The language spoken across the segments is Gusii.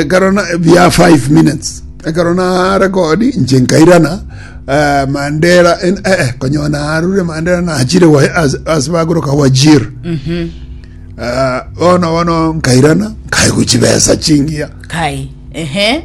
ekero na bia 5 minutes ekero narekodi inche nkairana eh, mandera en- eh, eh, konyoa narure mandera nachire wa- as- ase bagoroka wajir Eh, bono bono nkairana nkaeguchi besa chingiya kai ehe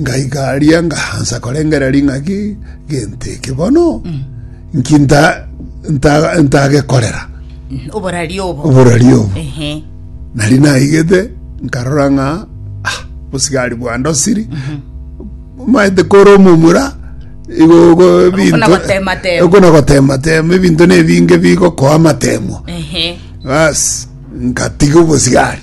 ngaika aria ngaansa korengera ring'aki gento eke bono nki nta- nta- ntagekorera oborari obo oborari obo Ehe. nari naigete nkarora ng'a ah, bosigari bwandosiri maete kore omomura igo igo ebinto- nagotematema. igo nagotematema ebinto na ebinge bigokoa amatemo Ehe. bas nkatiga obosigari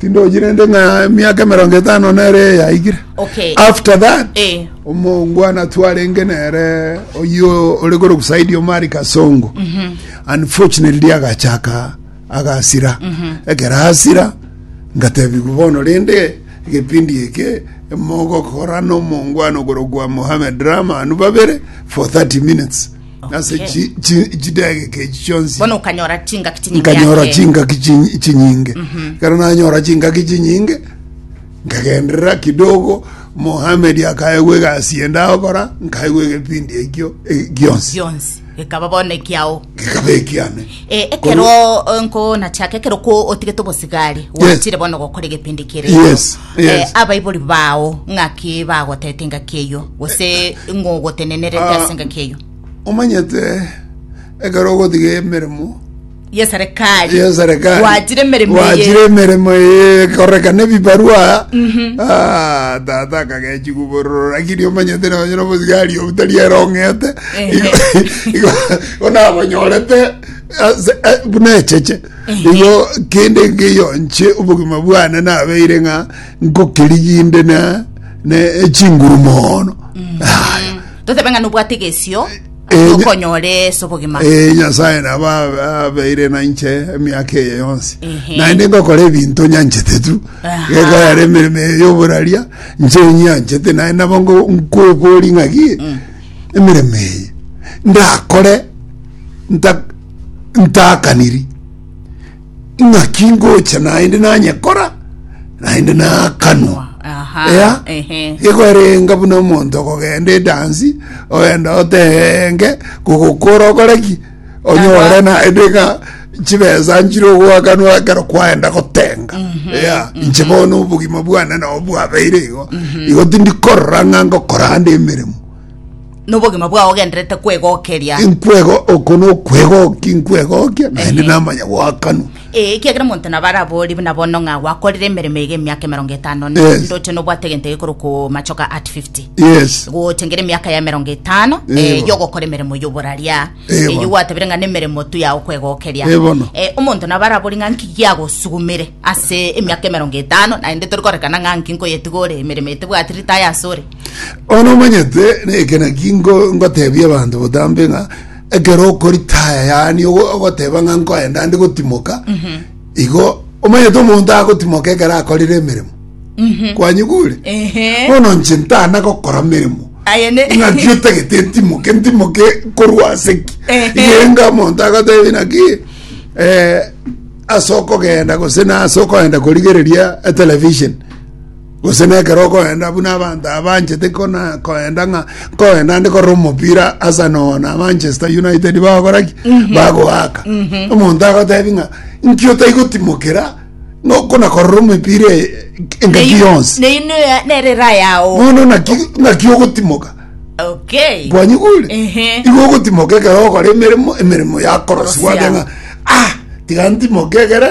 tindochi rende ng'a emiaka emerongo etano nere yaikire Okay. after that Eh. omongwana twarenge nere oyio ore kore kusaidi omari kasongo unfortunately agachaka agasira ekero asira ngatebigwa bono rende egepindi eke mogokora nomongwana okorokwa mohamed rahman babere for 30 minutes Ase Eh. chi- chi- chidegeka echi chionsi bono okanyora chingaki chinyingi nkanyora ake. chingaki chi- chinyinge ekero nanyora chingaki chinyinge nkagenderera kidogo mohamed akaegwa egasi ende agokora nkaegwa egepindi ekio e- gionsi gionsi ekaba bono ekiao gikaba ekiane Eh, ekero eh, nko nachaka ekero ko otigete obosigari Yes. wachire bono gokora egepindi kere Yes. Yes. eh, abaibori bao ng'aki bagotete engaki eyio gose ng'ogotenenerete Ah. ase engaki eyio omanyete ekero ogotiga emeremo ye serikali ya serikali gwachire emeremo gwachire eye emeremo eye korekana ebibarua Ah, tata akagechi kubororo lakini omanyete nonye nomosigari obutari erong'ete Ehe. onabonyorete ase- eh, buna echeche Erio kende nkeyonche obogima bwane nabeire ng'a nkokeriginde na ne chinguru mono. Aya. totebe ng'a nobwate egesio Eh, nya- okonyore ase obogima Eh, nyasaye nabo abe- abeire nainche emiaka eye yonsi Ehe. naende ngokora ebinto nyanchete tu Aha. gekoyara emeremo eye yoboraria nche nyanchete naye nabo ngo- nkwebori ng'aki emeremo eye ndakore nta ntaakaniri, ng'aki ngocha naende nanyekora, naende naakanwa. Aha, Ea, ehe. igo erenga buna omonto okogenda edansi ogenda otenge kogokora okore ki onyore naende ng'a chibesa nchire ogoakanwa ekero kwaenda gotenga Ea, inche bono obogima bwane nabo bwabeire igo igo tindi korora ng'a ngokora ande emeremo nobogima bwao ogendererete kwegokeria. inkwego oko nokwegokia inkwegokia naende Ehe. namanya goakanwa Ee, ekiagera omonto nabo araborie buna bono ng'a gwakorire emeremo eye emiaka emerongo etano na Yes. ndoche nobwate egento gekorokwa machoka at 50 yes gocha ngere emiaka ya emerongo etano Ee, eh, bono. yogokora emeremo yoboraria Eh, Eh, bono. yogwatabire ng'a nemeremo tu yao kwegokeria Eh, bono. Eh, omonto nabo arabori ng'a nki giagosugumire ase emiaka emerongo etano naende tori korekana ng'a nki nkoyetiga ore emeremo etebwati ritaya ase ore Bono omanyete nekina ki ngo- ngotebia abanto botambe ng'a ekero okoritaya yaani ogo- ogoteba ng'a nkoenda ndi gotimoka igo omanyete omonto agotimoka ekero akorire emeremo kwanyigure Ehe. bono nche ntana gokora meremo Aye ne- ng'aki otagete ntimoke ntimoke korwa ase ki Ehe. igenga omonto agotebi naki eh, ase okogenda gose na ase okoenda korigereria etelevision Gose nekero okoenda buna abanto abanchete koenda ng'a nkoenda nde korora omopira Arsenal na Manchester United bagokora ki mhm. bagoaka mhm. omonto agotebi ng'a nki otaigotimokera nokona korora omopira e, engaki yonsi bono naki ogotimoka kwanyigure igo ogotimoka ekero okora emeremo emeremo yakorosiwa ng'a ah tiga ntimoke egere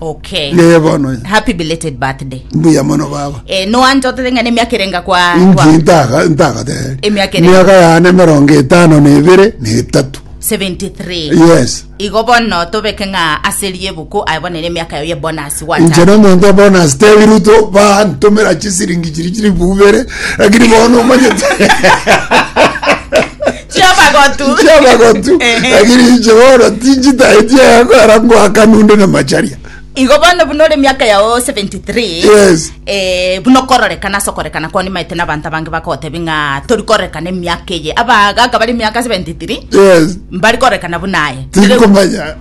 Okay. Yeye bono ye. Happy belated birthday. Mbuya mono baba. Eh, no anjotete ng'a nemiaka erenga kwa kwa Inki ntaga ntagateri. Emiaka ere. Miaka yane merongo etano na ebere na etatu. 73. Yes. Igo bono tobeke ng'a aserie ebuku aye bono ere emiaka yayo ye bonus Inche gwata. no muntu obona stebi ruto ba ntomera chisiringi chiri chiri bubere lakini bono omanyete. chiamagotu chiamagotu Ehe. lakini inche bono tinchitaeti egekora ngoakana onde na macharia igo bono buna ore miaka yao 73 Yes. eh, buna okororekana ase okorekana kwao nimaete nabanto abange bakogotebi ng'a tori korekana emiaka eye abagaga bari miaka 73 yes mbari korekana buna aye tinkomanya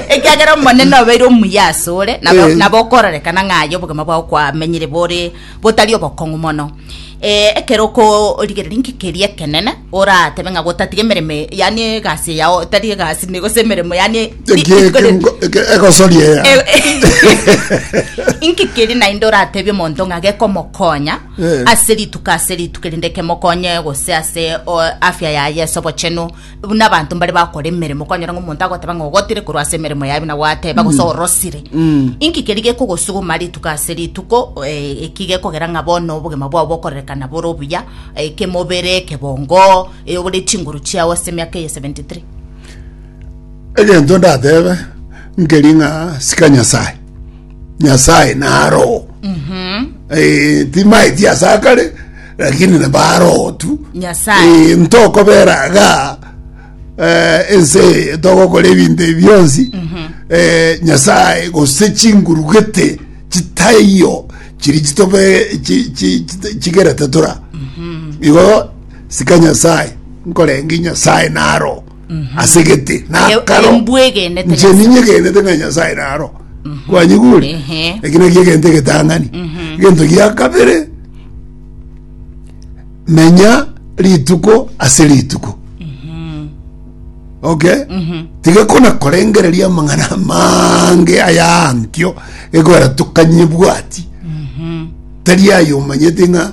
ekiagera omonene obeire omuya ase ore nabo Eh. nabo okororekana ng'aye obogima bwao kwamenyire bore botari obokong'u mono. Eh, ekero okorigereria inki keria ekenene, oratebe ng'a gotatiga emeremo, e- yaani egasi eyao, tari egasi, ne- gose emeremo, yaani ri- Eki- eki- ri- ngo- eke- egosoria eya inki keri naende oratebia omonto ng'a gekomokonya Eh. ase rituko ase rituko erinde kemokonye gose ase o, afya yaye ase obochenu buna abanto mbare bakora emeremo kwanyora ng'a omonto agoteba ng'a ogotire korwa ase emeremo yaye buna gwateba gose orosire Mm. inki keri gekogosuguma rituko ase rituko eh, eki gekogera ng'a bono obogima bwao bokorerekana bore obuya eh, kemobere kebongo eh, obore chinguru chiao ase emiaka eye 73 egento ndatebe nkeri ng'a sika nyasaye nyasaye narogo timaeti asakare Lakini nabarotu Nyasae. eh, ntokobera ga eh, ense eye togokora ebinto ebi bionsi eh, nyasae gose chingurugete chitaiyo chiri chitobe chi- chi- chi- chigerete tora igo sika nyasae nkorengi nyasae naro asegete nakaro mbwegenete nche ninyegenete ng'a nyasaye naro kwanyigure Ehe. eki nakio egento egetang'ani egento gia kabere menya rituko ase rituko okay tiga kona korengereria amang'ana amange ayankio egora tukanye bwati tari ayo omanyete ng'a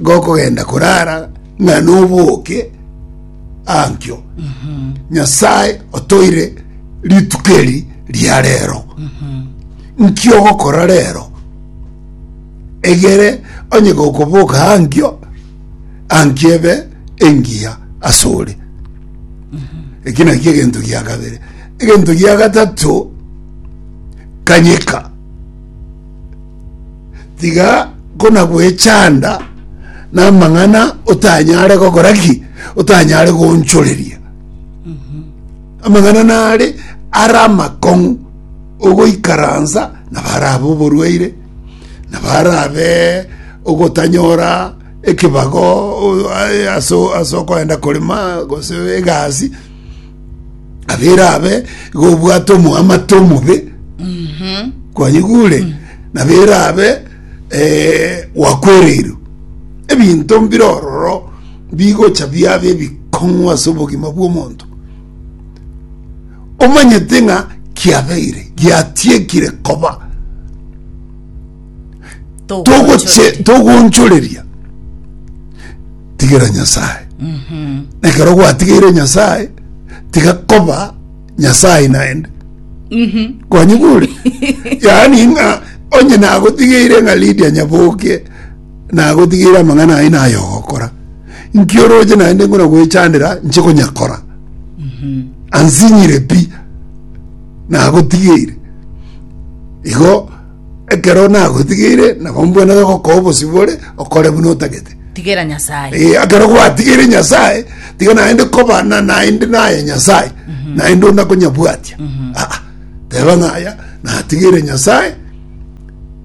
gokogenda korara ng'a noboke ankio nyasae otoire rituko eri ria rero nki ogokora rero egere onye gokoboka ankio ankio ebe engiya ase ore eki naki egento gia kabere egento gia gatato kanyeka tiga konagwechanda namang'ana otanyare gokora ki otanyare goonchoreria amang'ana nare ara amakong'u ogoikaransa nabarabe oborwaire nabarabe ogotanyora ekebago o- a- ase o- ase okoenda korema gose egasi abere abe igo obwate omoamate omobe kwanyigure nabere abe eh, wakwereirwe ebinto mbire ororo bigocha biabe ebikong'u ase obogima bw'omonto omanyete ng'a kiabeire giatiekire koba togoche togonchoreria tigera nyasaye nekero gwatigeire nyasaye tiga koba nyasaye naende kwanyigure yaani ng'a onye nagotigeire ng'a lidia nyaboke nagotigeire amang'ana aye naye ogokora nkioroche naende ngona gwechandera nche konyakora ansinyire pi nagotigeire igo Ekero nagotigeire, nabo mbwene gokoa obosibore, okore buna otagete. Tigera Nyasaye. Eh, ekero gwatigeire nyasae tiga naende koba na naende naye nyasae naende ona konyabwatia Ah, ah. teba ng'aya natigeire nyasae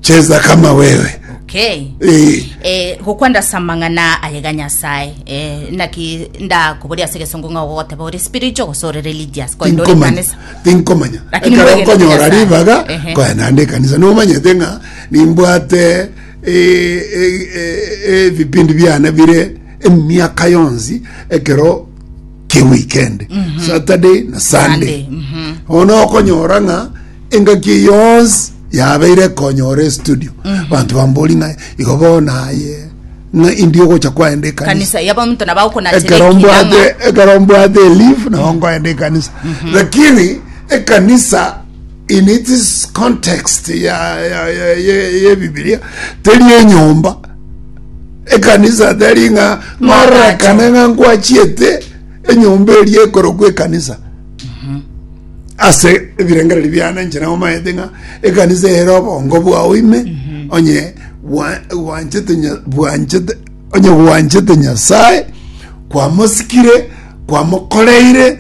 cheza kama wewe Okay. Eh, Eh, gokwanda ase amang'ana ayega Nyasae. Eh, naki ndakoboria ase egesongo ng'a ogoteba ore spiritual gose ore religious. Koende ore tinkomanya kanisa. Tinkomanya. Lakini Ekero mwegere nkonyora Nyasaye. ribaga Ehe. nkoya naende ekanisa. Nomanyete ng'a nimbwate eh, eh, eh, ebipindi biane bire emiaka yonsi ekero kia weekend. Saturday na Sunday. Sunday, mhm. Ono okonyora ng'a engaki yonsi yabeire ekonyora estudio banto bambori ng'a igo bono aye ng'a indi ogocha kwaenda ekanisa kanisa yaba omonto nabo agokonachera ekero ekina ng'a mbwate ekero mbwate elive nabo nkoenda ekanisa lakini ekanisa in its context ya ya ya ya ya ebibilia teri enyomba ekanisa teri ng'a ng'ororekane ng'a nkwachiete enyomba eria ekorokwa ekanisa ase ebirengererio biane inche nabo maete ng'a ekanisa ere obongo bwao ime onye bwa- bwanchete Nya- bwanchete onye bwanchete nyasaye kwamosikire kwamokoreire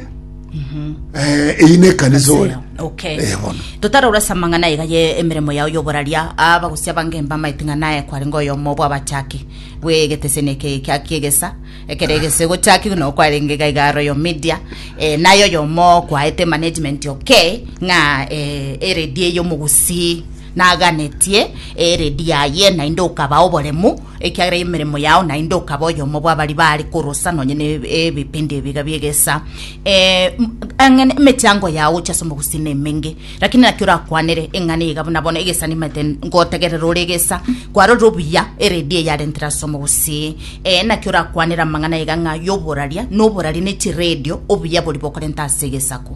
eh, eyi ne ekanisa ore okay Eh, bono. totarora ase amang'ana aiga ye emeremo yao yoboraria abagusia bange mbamaete ng'a naye kwarenge oyomo bw'abachaki bw'egetesene eke kia- kiegesa Ekero egese gochakigwe nabo kwarenge iga iga royal media eh, naye oyomo kwaete management okay ng'a eh, eredi eye omogusii naganetie eredi yaye naende okaba oboremu ekiagera emeremo yao naende okaba oyomo bwabari baare korosa nonye ne ebipindi ebiga biegesa eh, m- ang'e emechango yao gochia ase omogusii nemenge Lakini naki orakwanere eng'ana eyaiga buna bono egesa nimanyete ngotegerera ore egesa kwarorire obuya eredio eyarentire ase omogusii? Ee, naki orakwanere amang'ana aiga ng'a y'oboraria na oboraria ne chiredio obuya boria bokorenta ase egesaku?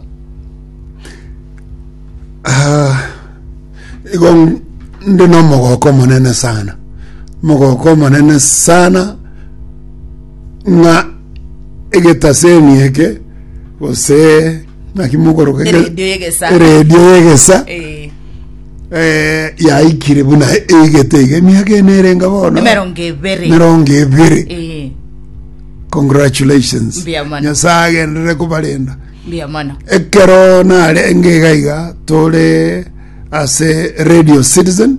Ah, igo n- ndi nomogoko omonene sana omogoko omonene sana ng'a egetaseni eke gose naki mokoroka eke- Eredio yegesa. eredio yegesa Eh, eh, yaikire buna eigete iga emiaka ene erenga bono emerongo ebere merongo ebere Eh, congratulations Mbuya mono. nyasaye agenderere kobarenda mbuya mono ekero narenge iga iga tore ase radio citizen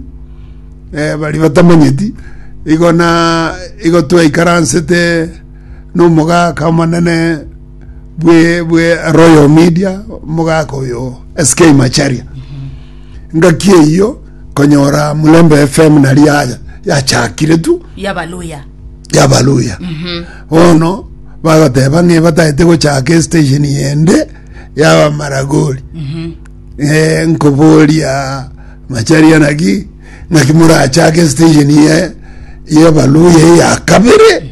eh, bari batamanyeti igo na igo twaikaransete nomogaka omonene bwe bwe Royal Media mogaka oyo SK Macharia ngaki eyo konyora Mulembe FM nari ya yachakire tu yabaluya yabaluya bono bagoteba ng'e bataete gochaka estation yende yabamaragori eh, nkoboria macharia naki naki morachake station ye yebaluya ya kabere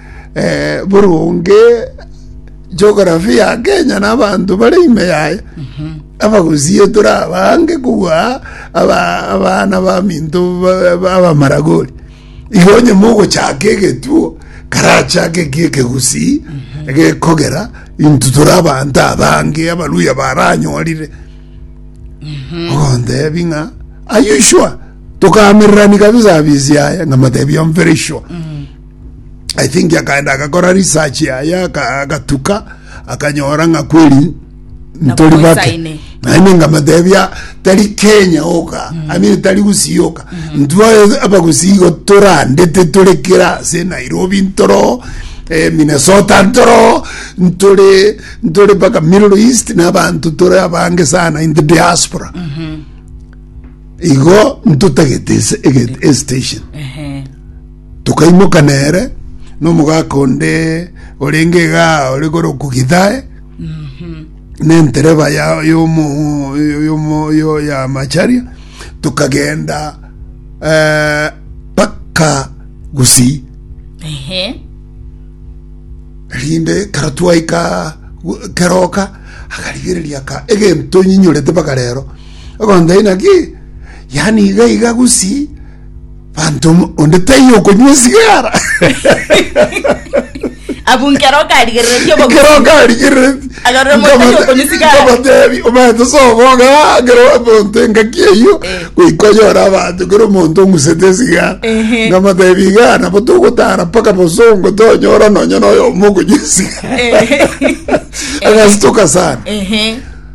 eh, boronge geography ya kenya na abanto bare ime yaye abagusie torabange kogwa aba- abana baminto ba- ba- abamaragori igo onye mogochaka egetuo karachake ki ekegusii gekogera intu tore abanto abange abaluya baranyorire ogontebi ng'a ayushwa tokamererani kabisa abisi aya ng'amatebi am very sure i think akaenda agakora research yaye aka- agatuka akanyora ng'a kweri ntori bake Nabomoisaine. naende ngamatebia tari kenya oka amire tari gusii oka ntwae abagusii igo torandete tore kera ase nairobi ntoro eh, minnesota ntoro ntore ntore mpaka middle east n'abanto tore abange sana in the diaspora igo ntotagete ese- ege- estation Ehe. Tokaimoka nere nomogaka onde orenge iga ore kore okogithae, nentereba ya yomo yomo yo ya macharia tokagenda eh, paka Gusii Ehe. rinde kero twaika gu- keroka akarigereria ka egento nyinyorete mpaka rero ogonta inaki yani iga iga gusi Banto onde taiyo okonywa esigara. abunkera okarigereretie kero karigerereti Agarora motari okonywa esigara. kabatebi omanyete soboga kero omonto engaki eyio Eh. goikonyora abanto kero omonto ong'usete esigara Ehe. ngamatebi iga nabo togotara mpaka bosongo tonyora nonya noyomo okonywa esigara Eh. agasitoka sana Ehe.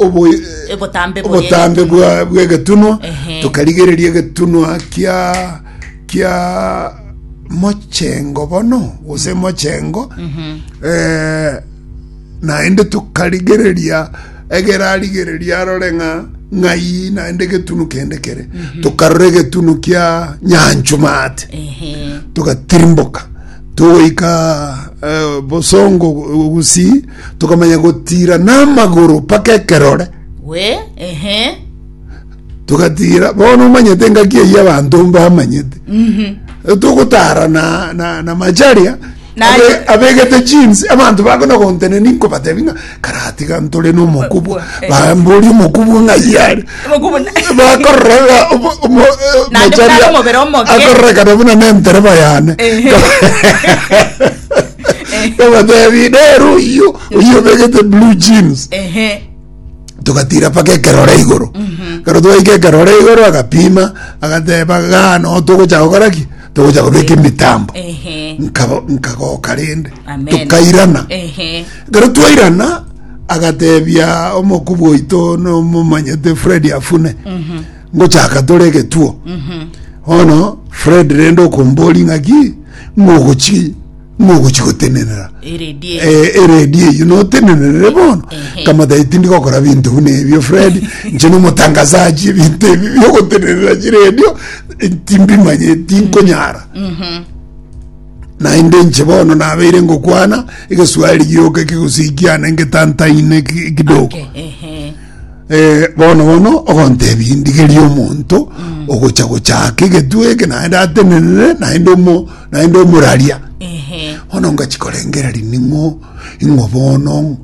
obo- Obotambe boye. obotambe bwa- bw'egetunwa Ehe. tukarigereria egetunwa kia kia mochengo bono gose mochengo eh, naende tukarigereria egerarigereria arore ng'a ng'ai naende egetunu kende kere tukarora egetunu kia nyanchumate Ehe. tugatirimboka tugoika eh, bosongo gusii Tokamanya gotira namagoro mpaka ekerore. We, ehe. Togatira, bono omanyete engaki eyio abanto mbamanyete. Eh, Togotara na, na, na macharia, Na- abe- abegete jeans, abanto bakona gonteneni nkobatebi ng'a karatiga ntore nomokubwa, Eh. bambori omokubwa ng'ayare. Omokubu na- bakororega omo- omo- eh, Naende macharia buna omobere omoke. akororeka na buna nentereba yane Ehe. Bagatebia, nere oyio, oyio obegete blue jeans. ehe togatira paka ekerore igoro kero twaika ekerore igoro agapima agateba gano togocha gokora ki togocha gobeka emitambo ehe Nkabo- nkagoka rende Amen. tokairana ehe kero twairana agatebia omokubu oito nomomanyete fredi afune ngochaka tore egetuo bono fred rende okombori ng'aki ng'ogochi ng'ogochi gotenenera Eredi eyo. Eh, eredi eyi notenenerere bono Ehe. kamatae tindi gokora binto buna ebio fred nche nomotangasaji ebinto ebi biogotenerera chiredio eh, timbimanye tinkonyara naende nche bono nabeire ngokwana egeswahili gioka ekegusii kiane ngetantaine ki- kidogo Okay, ehe. Eh, bono bono ogontebi ndigerie omonto ogocha gochaka egetwe eke naende atenenere naende omo naende omoraria Ehe. bono ngachikorengeri ning'o ing'o bono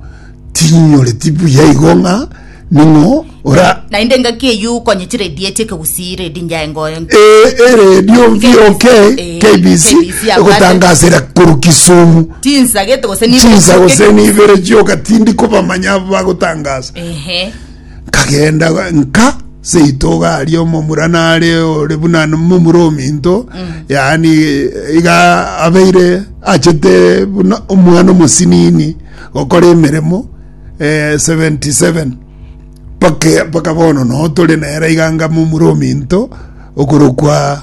tinyoreti buya igo ng'a ning'o ora naende ngaki eyu konyechire edieti ekegusii redi njae ngoyo Eh, eredio VOK Eh, KBC KBC, abwate. egotangasera koru Kisumu Tinsagete gose nibe chinsa nsoke. gose nibere chioka tindi kobamanya abo bagotangaza Ehe. nkagenda nka seitoga aria omomura nare ore buna momura ominto yaani iga abeire achete buna omwana omosinini gokora emeremo eh, 77 pake paka bono no tore nere iga nga momura ominto okorokwa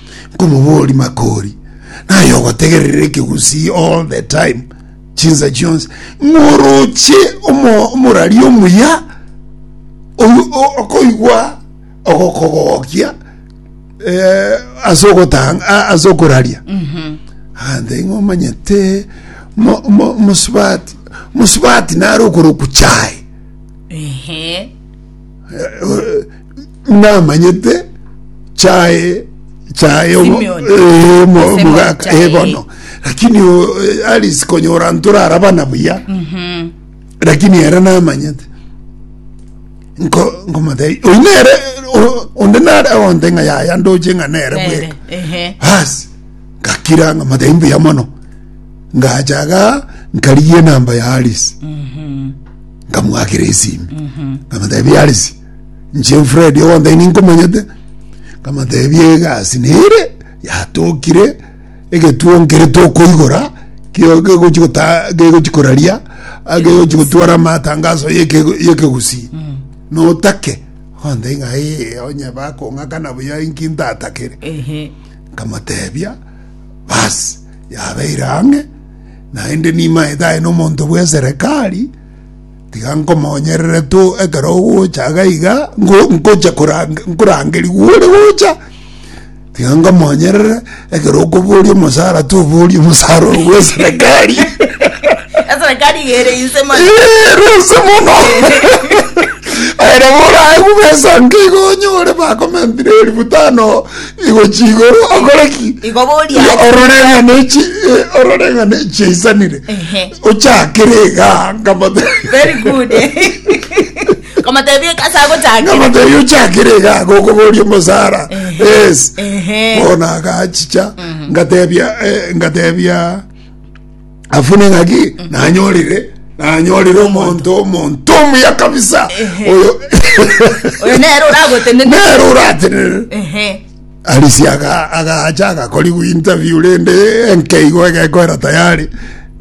Nkomobori makori, naye ogotegerera ekegusii all the time, chinsa chionsi, ng'oroche omo- omorari omuya oyu o- okoigwa ogokogokia eh, ase ogotanga a- ase okoraria ande ng'omanyete mo- mo- mosubati mosubati nare okoroku chae Ehe. namanyete chae chae obo- Simeon. eh, mo- Ase mogaka mochae. eh, bono lakini o- eh, alice konyora ntorara bana buya lakini era namanyete nko nkomotei oyi nere o- onde nare onde ng'a yaya ndoche ng'a nere Nere, bweka ehe. basi ngakira ng'a motei mbuya mono ngachaga nkarigie namba ya alice nkamwakira esimi nkamotebia alice Inche Fred ogontebia ninkomanyete, nkamotebia egasi nere yatokire egetuo nkere tokoigora kio kegochi gota kegochi koraria akegochi gotwara amatangaso yeke yekegusii notake ontebia ng'a ee onye bakong'akana buya inki ntatakere Ehe. nkamotebia basi yabeire ang'e naende nimaete aye nomonto bweserekari Tiga nkomonyerere tu ekero ogocha iga iga, nkocha nkorangeria gwore gocha, tiga nkomonyerere ekero okoboria omosara toborie omosara ore bwa eserekari. Eserekari igere inse mani. Rose mono. Ere borae bubesa nkigo onyore bakomentire elfu tano igochi igoro okore ki? Igo boria. Ororeng'ane chi ororeng'ane chiaisanire. Ochakire iga nkamotebia. Very good. Komotebia eka ase agochakire. Nkamotebia ochakire iga gokoboria omosara. Yes. Ehe. Bono agachicha ngatebia eh, ngatebia afune ng'aki nanyorire nanyorire omonto omonto omuya kabisa oyo Oyo nere oragotenene. nere oratenene Ehe. Alice aga- agacha agakorigwa interview rende enke igo egekoera tayari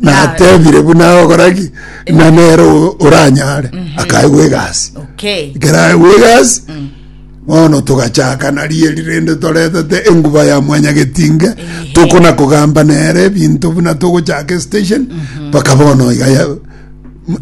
natebire buna ogoraki na nere o- oranyare akaegwa egasi okay keraegwa egasi bono togachaka narieri rende toretete enguba ya mwanyagetinge tokona kogamba nere ebinto buna togochaka estation mpaka bono iga ya-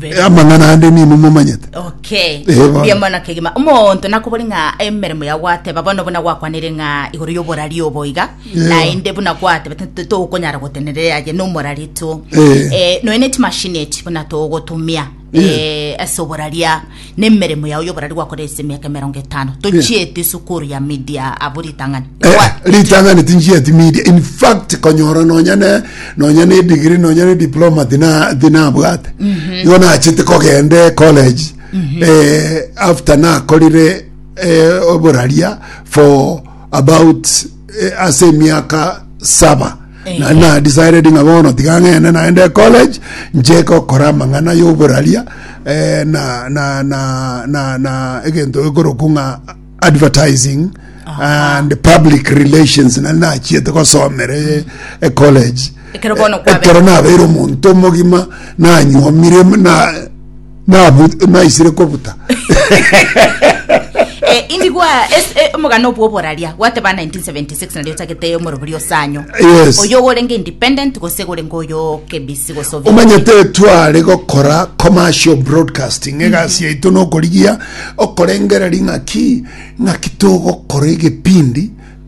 Eh, amang'ana ande nini momanyete okay Eh, bono. mbuya mono kegima omonto nakobori ng'a emeremo ya gwateba bono buna gwakwanire ng'a igoro y'oborari obo iga Yeah. naende buna gwatebete nti tokonyara gotenereria aye nomorari tu Eh. Eh, noe ne chimashini echi buna togotumia Yeah. eh, ase oboraria Nemeremo yao y'oborari gwakora ase emiaka emerongo etano, tochieti esukuru ya media abwo ritang'ani. Eh, Kwa- ritang'ani tinchieti media in fact konyora nonya ne nonya ne degree nonya ne diploma tina tinabwate igo nachete kogende college eh, after nakorire eh, oboraria for about eh, ase emiaka saba na na decided ng'a bono tiga ng'ende naende college nche gokora amang'ana y'oboraria eh, na na na na na egento ekoroku ng'a advertising and public relations nari nachiete gosomere e college Ekero bono Eh, kwabeire. ekero nabeire omonto omogima nanyuomire na Nabu- naisire kobuta Eh, indigwa es- eh, omogano obwo oboraria gwateba 1976 nario otagete omorobori osanyo Yes. oyo ogorenge independent gose gorenge oyo kebisi gose obi- omanyete tware gokora commercial broadcasting egasi yaito nokorigia okorengereria ng'aki ng'aki togokora egepindi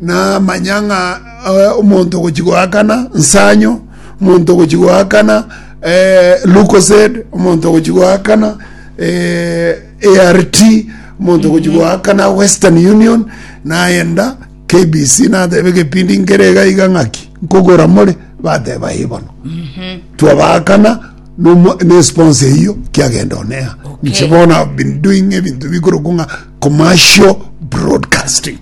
namanya ng'a eh, omonto ogochia goakana nsanyo omonto ogochia goakana eh, lucosed omonto ogochia goakana eh, art omonto ogochia goakana western union nayenda kbc natebe gepindi nkere iga iga ng'aki nkogora more bateba eye bono twabakana nomo- ne sponsor eyo kiagenda onea Okay. nche bono I've been doing ebinto bikoroku ng'a Commercial Broadcasting.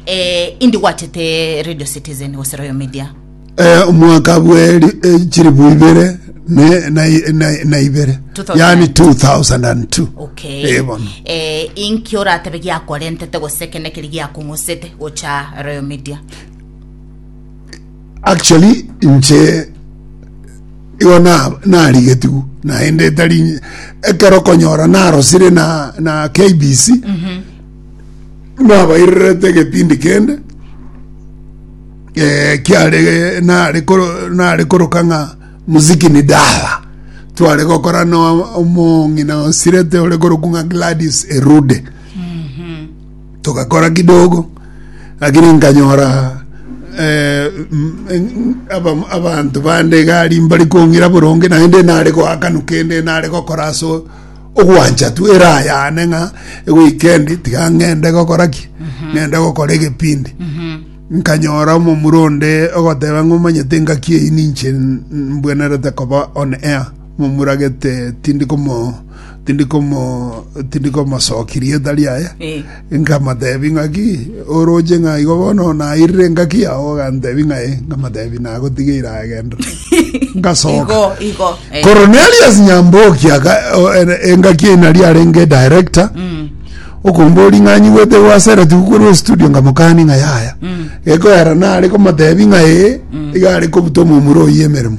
Eh, indi gwachete Radio Citizen gose Royal Media. Eh, omwaka bwe ri- eh, chilifu ibere ne- na- na- na ibere 2002. yani 2002 Okay. Eh, bono. Eh, inki oratebe giakorentete gose kene keri giakong'osete gocha Royal Media? Actually inche igo na- narigetigwe naende etari ekero okonyora narosire na na KBC nabairerete egepindi kende eh, kiare nare koro- nare koroka ng'a muziki ni dawa tware gokora na omong'ina osirete ore korokwa ng'a Gladys Erude Togakora kidogo, lakini nkanyora eh, mm, mm, aba- abanto bande egari mbari kong'ira boronge naende nare goakanu kende nare gokora ase o- ogwancha tu erayane ng'a ewikendi tiga ng'ende gokora ki ng'ende gokora egepindi nkanyora omomura onde ogoteba ng'omanyete ngaki eyi ninche n- mbwenerete koba on air Momuragete tindi komo tindi komo tindi komosoki rieta riaye Eh. nkamotebi ng'aki oroche ng'a igo bono nairire engaki yao ogantebi ng'a eh nkamotebi nagotigeire agendere ngasoka Igo, igo. Eh. Cornelius Nyamboki aka o- en- engaki eye nari arenge director Mm. okombori ng'a nyigwete gwasereti gokwerwa estudio nkamokani ng'a yaya Mm. gekoera nare komotebi ng'a ee iga are kobuta omomura oyi emeremo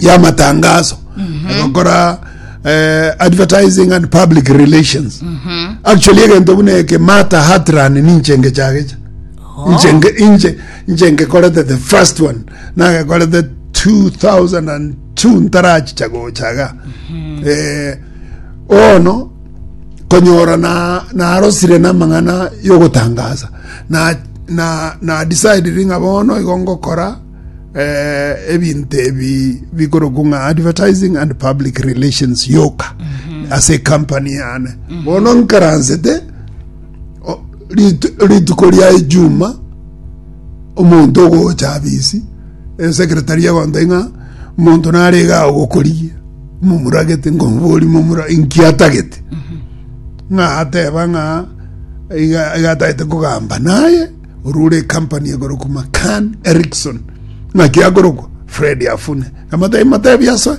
ya matangaso agokora eh, advertising and public relations actually egento buna eke mata hatran ninchenge chagecha inchenge inche inchenge korete the first one nagekorete 2002 ntarachicha gochaga eh, ono konyora na narosire namang'ana yogotangaza na na na decided ng'a bono igo ngokora eh, ebinto ebi bikorokwa ng'a advertising and public relations yoka ase company yane bono nkaransete o- ritu- rituko ria ejuma omonto ogocha abisi esekretari egontai ng'a omonto narega ogokorigia momuragete nkomobori momura inkiatagete ng'a ateba ng'a iga- igatagete kogamba naye Oria ore ekampani egorokwa Macan Erickson ng'aki akorokwa Fred afune amatai matebi ase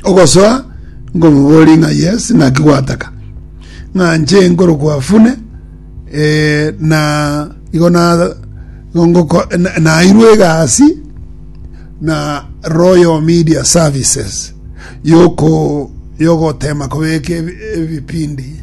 ogosoa nkomobori ng'a yes naki gwataka ng'a nche nkorokwa afune eh, na igo na ngoko nairwe egasi na Royal Media Services yoko yogotema kobeka ebipindi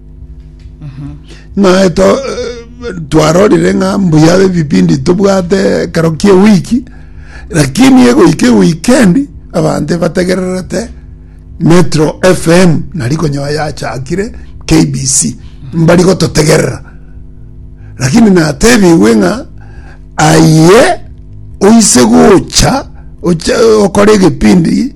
Naye to eh, twarorire ng'a mbuya ebipindi tobwate ekero kia ewiki lakini egoika ewikendi abanto bategererete metro fm nari konyoa yachakire kbc mbari gototegerera lakini natebigwe ng'a aye oise gocha oche- okore egepindi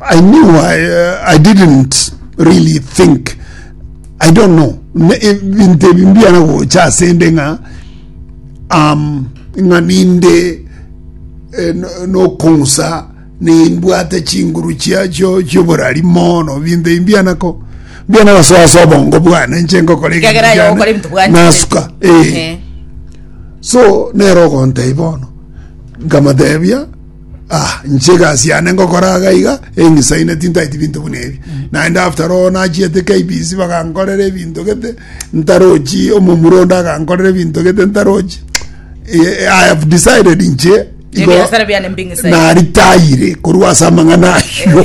I knew I, uh, I didn't really think I don't know Ne- e- binto ebi mbiana gocha ase inde ng'a um, ng'a ninde eh, no- nokong'usa nimbwate chinguru chia chio chioborari mono binto ebi mbianako mbiana gasoasa obongo bwane nche ngokora eginto Kegera kiane, yogokora ebinto bwane. nasuka eh. Eh. so nero ogontei bono nkamatebia Ah, inche egasi yane ngokora iga iga eng'isaine tintaeti binto buna ebi naende after all nachiete KBC bagankorera ebinto gete ntarochi omomura onde agankorera ebinto gete ntarochi Eh, I have decided inche igo Ebiasara biane mbing'isaine. naritayire korwa ase amang'ana ayio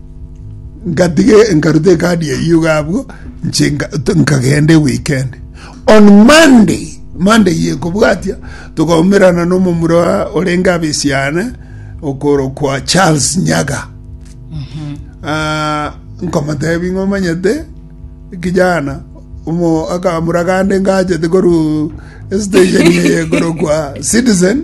Ngatige nkaruta ekadi eyio iga abwo nche nkagenda ewikend. On Monday, Monday eye kobwatia, togaumerana na omomura orenge abisiane okorokwa Charles Nyaga. Ah, nkomotebi ng'a omanyete kijana omo akamura gande ngachete koru station eye ekorokwa Citizen.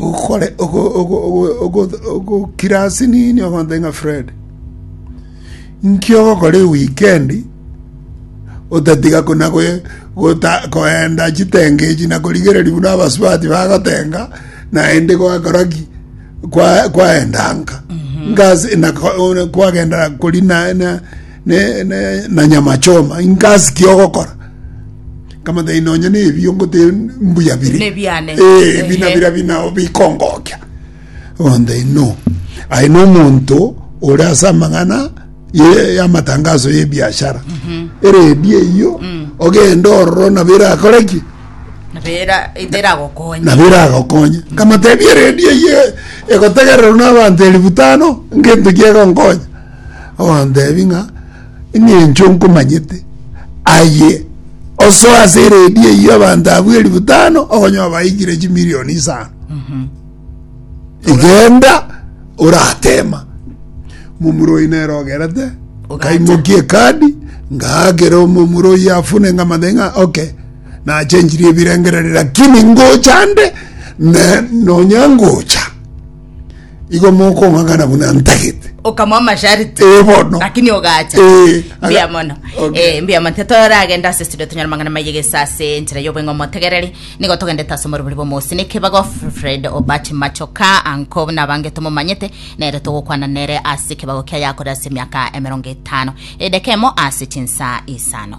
ogokore ogo ogo ogo ogo ogokira ase nini ogonte ng'a Fred, nki ogokora ewikeend otatiga kona goe gota koenda chitenge echi na korigereria buna abasubati bagotenga naende gwakora ki kwa kwaenda nka nka ase naka one kwagendera kori naye na. ne, ne, na nyama choma inka ase ki ogokora nkamotebia nonye na ebio ngote mbuya bire Nebiane. Eh, ebi na Ehe. bira bina bikongokia onde no aye no omonto ore ase amang'ana ye- y'amatangaso y'ebiashara eredi eyio ogenda ororo nabo erakore ki nabera iteragokonya nabo eragokonya nkamotebia eredi eyio egotegererwa n'abanto elifu tano ngento ki egonkonya ogontebi ng'a engencho nkomanyete aye osoe ase eredio eyio abanto abwo elifu tano okonye obaikire chimilioni isano egenda oratema momuroi nere ogerete nkaimoki ekadi ngaakera omomuroi afune nkamate ng'a ok nachenchirie ebirengereri lakini ngocha nde ne nonya ngocha igo mokong'ang'ana buna ntagete okamoa amashariti ee bono lakini ogacha Eh, aga- mbuya mono Okay. Eh, mbuya mono tetoragenda ase studio tonyora mang'ana mayegesa ase enchera y'obweng'e omotegereri nigo togendete ase omoribori bw'omosi nekebago fred obati machoka anko buna abange tomomanyete nere togokwana nere ase ekebago kia yakore ase emiaka emerongo etano edekemo ase chinsa isano